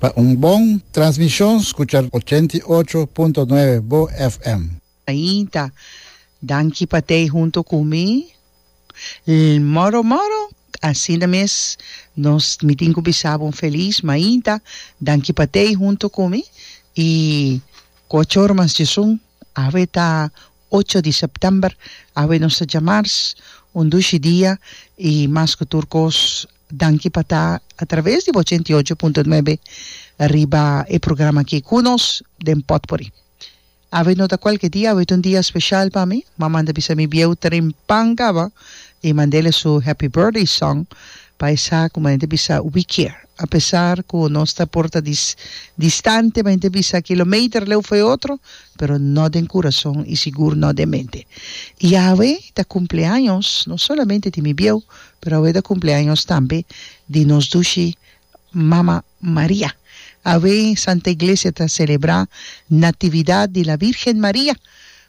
Pa un bon transmishon skucha ochenta i ocho punto nuebe bo FM. Ainda, danki pa t'ei hunto ku mi. Lmoro moro, asina mes nos mi tin ku bisa bo un felis mainta, danki pa t'ei hunto ku mi i ku a chor mas djesun, awe ta Ocho di September, awe nos ta djamars un dushi dia y mas cu tur cos danki pa ta a traves di bo ochenta y ocho punto nuebe riba e programa aki cu nos den potpourri. Awe no ta cualke dia, awe ta un dia special pa mi, ma manda bisa mi bieu Trin Pan caba y mandele su Happy Birthday Song pa esa cu manen ta bisa we care a pesar cu nos ta por ta dis distante manen ta bisa kilometer leu foe otro pero no den curason y sigur no den mente. Y awe ta cumpleaños no solamente di mi bieu, pero awe ta cumpleaños tambe di nos dushi Mama Maria. Awe Santa Iglesia ta celebra Natividad di la Virgen Maria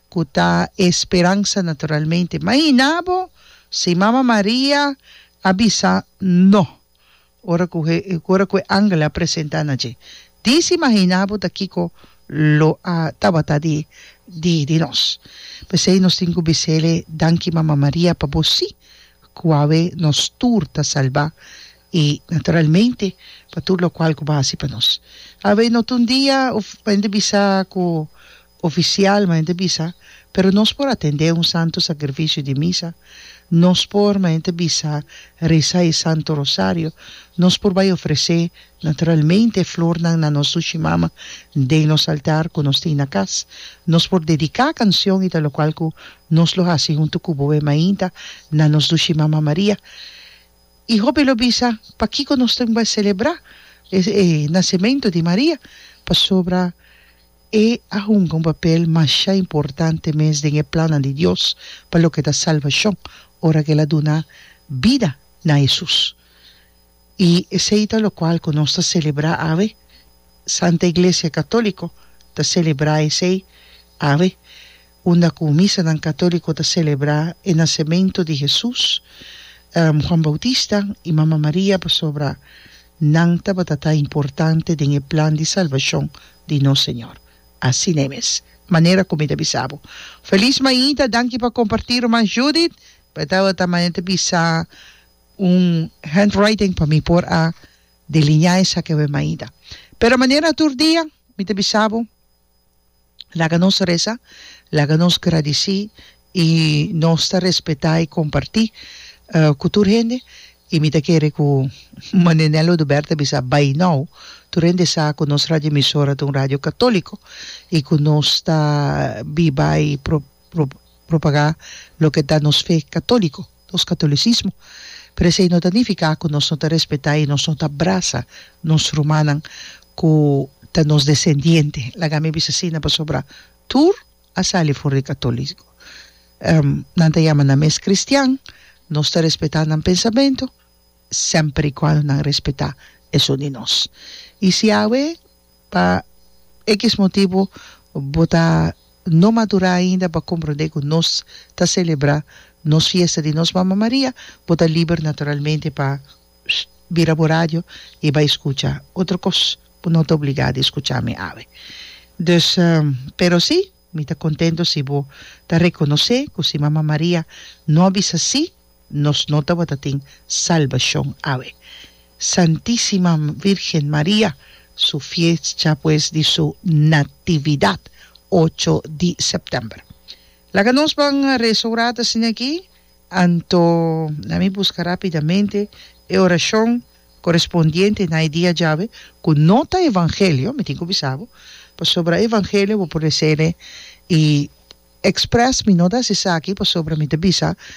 cu ta e speransa naturalmente. Maina bo si Mama Maria a bisa no Ora cu he, ora cu e angel a presenta na dje dis, imagina bo ta kico lo a tabata di, di, di nos. P'esey nos tin cu bisele, Danki, Mama Maria, pa bo si cu awe nos tur ta salba y, naturalmente, pa tur locual cu bo a haci pa nos. Awe no ta un dia, uf, hende bisa cu Oficialmente bisa, pero nos por atendé un Santo Sacrificio di Misa, nos por, manente bisa, reza e Santo Rosario, nos por bai ofrecé, naturalmente, e flornan na nos Sushimama den nos altar cu nos tin na cas, nos por dedicá cancion i ta locual cu nos lo haci huntu cu boe mainta na nos Sushimama Maria. I hopi lo bisa, pakico nos tin bai celebrá e nacemento di Maria? Pasobra. E a hunga un papel masha importante mes den e plannan di Dios pa loke ta salbashon ora ku el a duna bida na Hesus. I esei ta lokual ku nos ta selebrá awe. Santa Iglesia Katóliko ta selebrá esei awe unda ku misanan katóliko ta selebrá e nasementu di Hesus, Juan Boutista i Mama Maria pasobra nan tabata ta importante den e plan di salbashon di nos Señor. Asina mes, manera ku mi ta bisa bo. Felis Mainta, danki pa kompartí Ruman Judith, bo tabata mane ta bisa un handwriting pa mi por a deliñá esaki awe Mainta. Pero manera tur dia, mi ta bisa bo. Laga nos resa, laga nos gradici y nos ta respeta y comparti cu tur hende y mi ta kere cu Ma Nenel Oduber ta bisa bay now tur hende sa cu nos radioemisora ta un radio catolico y cu nos ta biba y propaga loke ta nos fe catolico. nos katolisismo, pero esei no ta nifiká ku nos no ta respetá i nos no ta brasa nos rumannan ku ta nos desendiente. Laga mi bisa asina pasobra tur a sali for di katolismo. Nan ta yama nan mes kristian, nos ta respetá nan pensamentu, semper i kuando nan respetá esun di nos. I si awe. Pa X motibu bo ta no madurá ainda pa komprondé ku nos ta selebrá nos fiesta di nos Mama Maria, bo ta liber naturalmente pa bira bo radio i bai skucha otro kos. Bo no ta obligá di skucha mi awe. Dus, pero sí, mi ta kontento si bo ta rekonosé ku si Mama Maria no a bisa sí, Nos no tabata tin salbashon awe. Santisima Virgen Maria, su fiescha pues di su Natividad, ocho di september. Laga nos ban reza ora ta asina aki, anto na mi busca rapidamente e oracion corespondiente na e dia djawe cu no ta Evangelio, mi tin cu bisa bo, pasobra Evangelio bo por resele y express mi no ta haci esaki pasobra mi ta bisa